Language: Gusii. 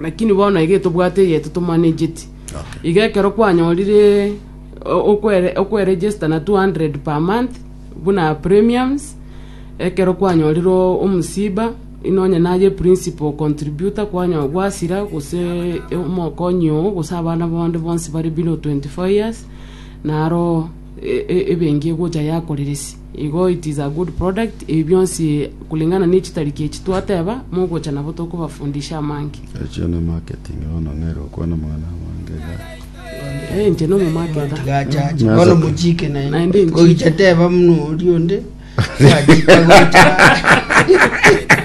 Lakini bono iga etobwate eye totomanageti. Okay. Iga ekero kwanyorire o- okwere- okweregister na 200 per month buna premiums ekero kwanyorire o- omosiba inonye naye principal contributor kwanyo gwasira gose e- omokonyi oo gose abana bonde bonsi bare below 24 years naro e- e- ebenki egocha yakoreresia Igo it is a good product ebi bionsi kulingana ne chitariki echi twateba mogocha nabo tokobafundisha amange. Echio ne marketing bono nere okwana mang'ana amange iga iga. Eh, inche nomo marketer. tigachache Nasa- bono mochike Naende naende nchike. oiche teba muna oria onde twachika gocha